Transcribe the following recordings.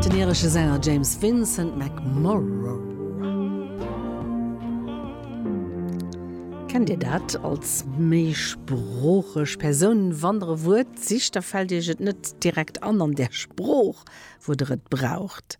Den iresche Sänger James Vincent McMorrow. Kennt Dir dat? Als méisproocheg Persoun, wann Der e Wuert sicht, da fält Iech et net direkt an, an där Sprooch, wou Der et braucht.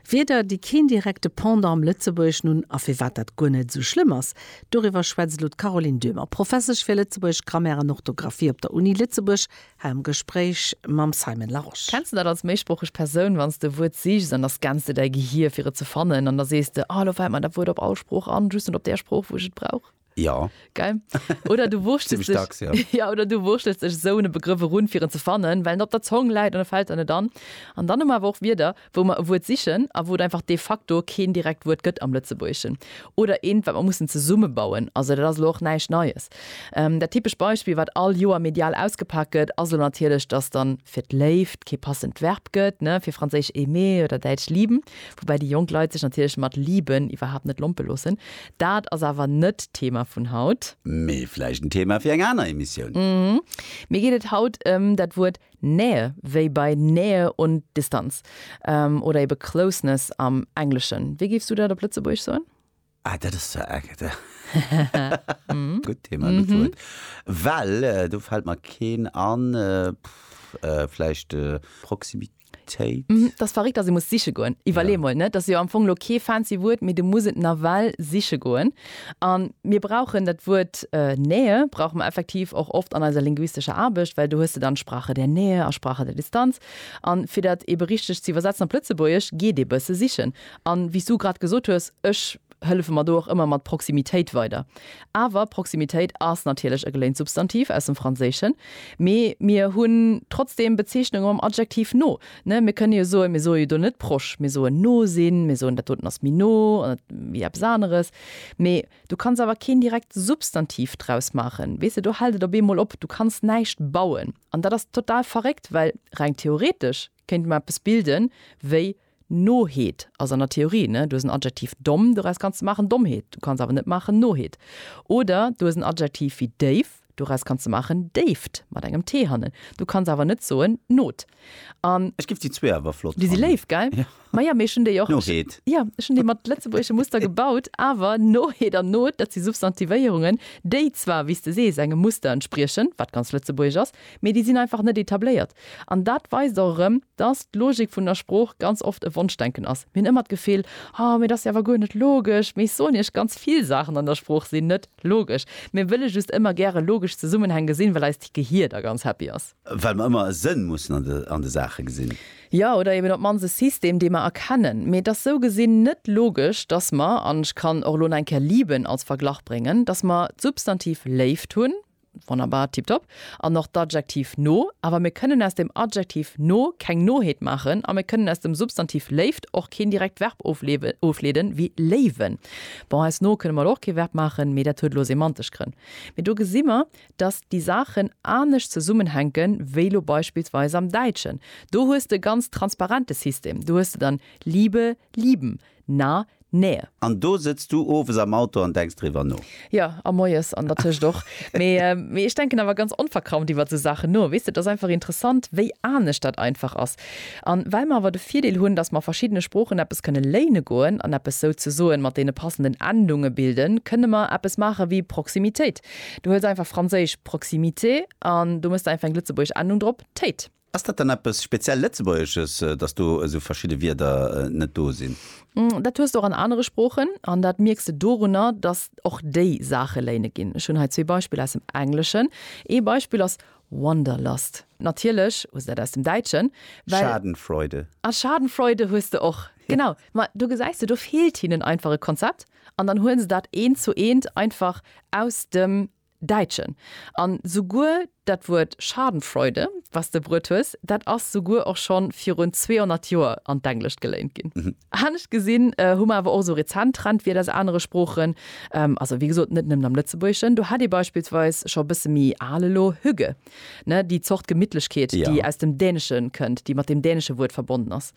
Wierder, déi keen direkte Pendant am Lëtzebuergeschen hunn, a firwat dat guer net esou schlëmm ass, doriwwer schwätzt elo d'Caroline Döhmer, Professesch fir Lëtzebuergesch Grammaire an Orthografie op der Uni Lëtzebuerg War am Gespréich mam Simon Larosche. Kenns de dat als méisproocheg Persoun, wann s de e Wuert sichs an da scanns de däi Gehier fir et ze fannen an da sees de, ah elo fält mer dat Wuert op all Sprooch an, just net op där Sprooch wou ech et brauch? Jo. Geil. Oder du wurschtels Zimmlech dacks, jo. dech, ja, oder du wurschtels dech esou un e Begrëff erun fir en ze fannen, well en op der Zong läit an e fält der net an. An dann hu mer awer och Wierder, wou mer e Wuert sichen a wou et einfach de facto keen direkt Wuert gëtt am Lëtzebuergeschen oder eent, wat mer mussen zesummebauen. Also dat ass elo och näischt Neies. Dat typescht Beispill, wat all Joer medial ausgepak gëtt, ass elo natierlech, dass da fir d'Léift kee passend Verb gëtt, ne, fir Franséisch aimer oder Däitsch lieben, woubäi déi jonk Leit sech natierlech mat lieben iwwerhaapt net lompe loossen. Dat ass awer net d'Thema vun haut. Mee vläicht en Thema fir eng aner Emissioun. Mir geet et haut ëm dat Wuert Nähe, wéi bei Nähe und Distanz, oder eben Closeness am Engleschen. Wéi géifs du dat op Lëtzebuergesch soen? Ah, dat ass zwar eng gutt Thema, gutt Wuert, well do fält mer keen an. Vläicht Proximitéit? Dat ass verréckt, dass ee muss siche goen. Iwwerlee mol, net? Dat ass jo am Fong elo kee fancy Wuert, mee du muss et nawell siche goen. A mir brauchen dat Wuert Nähe brauche mer effektiv och oft an eiser linguistescher Aarbecht, well do hues de dann Sprache der Nähe a Sprache der Distanz. A fir dat eebe richteg ze iwwersetzen op Lëtzebuergesch, geet ee bësse sichen. A wéi s du grad gesot hues, ech hëllefe mer do och ëmmer mat Proximitéit weider. Awer Proximitéit ass natierlech e geléint Substantiv aus dem Franséischen, mee mir hunn trotzdeem Bezeechnunge mam Adjektiv no. Ne, mir kënne jo soen, mir soe jo do net proche, mir soen no sinn, mir soen dat doten ass méi no wéi eppes aneres. Mee du kanns awer keen direkt Substantiv draus maachen. Weess de, do hält et op eemol op, du kanns näischt bauen. An dat ass total verréckt, well reng theoretesch kéinte mer eppes bilden wéi Noheet ass an der Theorie, ne, du hues en Adjektiv domm, doraus kanns de maachen Dommheet, du kanns awer net maachen Noheet. Oder du hues en Adjektiv wéi déif, Doraus kanns de maachen, Déift, mat engem T hannen. Du kanns awer net soen, Not. An. Ech giff déi zwee awer flott fannen. Déi si léif, gell? Jo. Ma jo, mee ech hunn déi och. Noheet. Jo, ech hunn déi mat lëtzebuergesche Muster gebaut. Awer Noheet an Not, dat si Substantivéierungen, déi zwar, wéi s de sees, engem Muster entspriechen, wat ganz lëtzebuergesch ass, mee déi sinn einfach net etabléiert. An dat weist och erëm, dass d'Logik vun der Sprooch ganz oft e Wonschdenken ass. Mir hunn ëmmer d'Gefill, Oh, mee dat ass jo awer guer net logesch. Mee ech soen Iech, ganz vill Saachen an der Sprooch sinn net logesch. Mir wëlle just ëmmer gäre logesch Zesummenhäng gesinn, well eist Gehier da ganz happy ass. Well mer ëmmer e Sënn mussen an de Saache gesinn. Jo, oder eben op d'mannst e System, dee mer erkennen. Mee et ass sou gesinn net logesch, dass mer, an ech kann och elo nach eng Kéier lieben als Verglach bréngen, dass mer d'Substantiv Léift hunn, Wonnerbar, tiptop. An och d'Adjektiv no. Awer mir kënnen aus dem Adjektiv no keng Noheet maachen a mir kënnen aus dem Substantiv Léift och keen direkt Verb ofleeden, wéi léiwen. Bon, aus no kënne mer elo och kee Verb maachen, mee dat huet elo semantesch Grënn. Mee do gesi mer, dass déi Saachen anescht zesummenhänken, wéi elo beispillsweis am Däitschen. Do hues de e ganz transparente System. Do hues de dann Liebe, lieben. Na, nää. An do sëtz du owes am Auto an denks driwwer no. Jo, a moies an dertëscht och. Mee, mee ech denken awer ganz onverkrampft iwwert esou Saachen no. Weess de, et ass einfach interessant, wéi anescht dat einfach ass. An well mer awer de Virdeel hunn, dass mer verschiddene Sproochen eppes kënne léine goen an eppes souzesoen mat deene passenden Endunge bilden, kënne mer eppes maache wéi Proximitéit. Du huels einfach franséisch proximité an do mëss de einfach eng lëtzebuergesch Endung drop, téit. Ass dat dann eppes speziell Lëtzebuergesches, datt do esou verschidde Wierder net do sinn? Dat hues de och an anere Sproochen. An dat mierks de dorunner, datt och déi Saache léine ginn. Ech hunn hei zwee Beispiller aus dem Engleschen. Ee Beispill ass Wanderlust. Natierlech hues de dat aus dem Däitschen, well. Schadenfreude. A Schadenfreude hues de och. Genau. Ma do gesäis de, do feelt hinnen einfach e Konzept. An dann huelen se dat eent zu eent einfach aus dem. Däitschen. An souguer dat Wuert Schadenfreude, wat s de bruet hues, dat ass souguer och scho virun 200 Joer an d'Englescht geléint ginn. Anescht gesinn hu mer awer och esou rezent Trendwierder aus anere Sproochen, also wéi gesot net nëmmen am Lëtzebuergeschen. Do hätt ee beispillsweis scho e bësse méi al elo Hügge. ne, déi Zort Gemittlechkeet, déi aus dem Dänesche kënnt, déi mat deem dänesche Wuert verbonnen ass.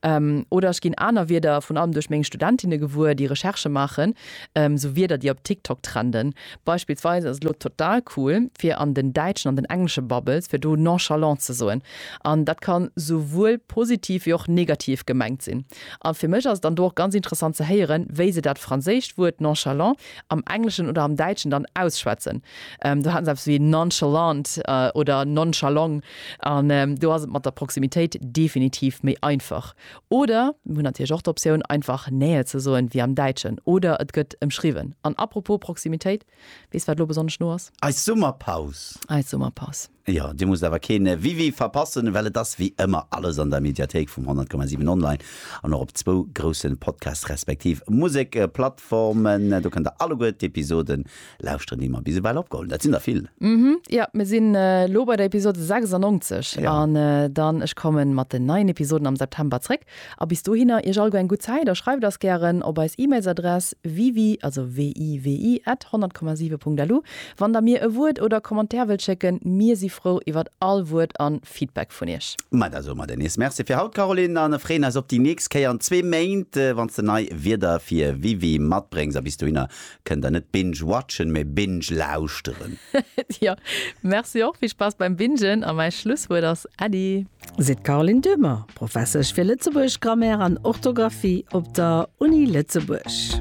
Ähm, oder ech ginn aner Wierder, vun allem duerch meng Studentinne gewuer, déi Recherche maachen, ähm, sou Wierder, déi op TikTok trenden. Beispillsweis ass et elo total cool, fir an den däitschen an den englesche Bubbles, fir do nonchalant ze soen. An dat kann souwuel positiv wéi och negativ gemengt sinn. A fir mech ass et dann do och ganz interessant ze héieren, wéi se dat franséischt Wuert nonchalant am Engleschen oder am Däitschen dann ausschwätzen. Do haten se eppes wéi nonchalant oder nonchalong an do ass et mat der Proximitéit definitiv méi einfach. Oder mir hunn natierlech och d'Optioun einfach Nähe ze soen, wéi am Däitschen, oder et gëtt ëmschriwwen. An apropos Proximitéit, weess wat elo besonnesch no ass? Eis Summerpaus! Eis Summerpaus! Jo, Dir musst awer keen Wiwi verpassen, well et ass wéi ëmmer alles an der Mediathéik vum 100,7 Online an och op zwou groussen Podcast respektiv Musekplattformen. Do kënnt der alleguer d'Episode lauschteren, déi mer bis ewell opgeholl hunn. Dat sinn der vill. Mhm, jo, mir sinn elo bei der Episode 96 an dann, ech kommen mat den neien Episoden am September zréck. A bis dohinner, Iech all guer eng gutt Zäit a schreift eis gären op eis E-Mails-Adress wiwi, also WIWI, at 100,7 Punkt LU, wann der mir e Wuert oder Commentaire wëllt schécken. Mir si frou iwwert all Wuert an Feedback vun Iech. Ma da soe mer der nees Merci fir haut, Caroline, an freeën eis op déi nächst Kéier an zwee Méint, wann s de nei Wierder fir WIWI matbréngs. A bis dohinner, Kënnt der net binge watchen, mee binge lauschteren? Jo, merci och. Vill Spass beim Bingen a mäi Schlusswuert ass Äddi. Seet d'Caroline Dummer, Professesch fir Lëtzebuergesch, Grammaire an Orthografie op der Uni Lëtzebuerg.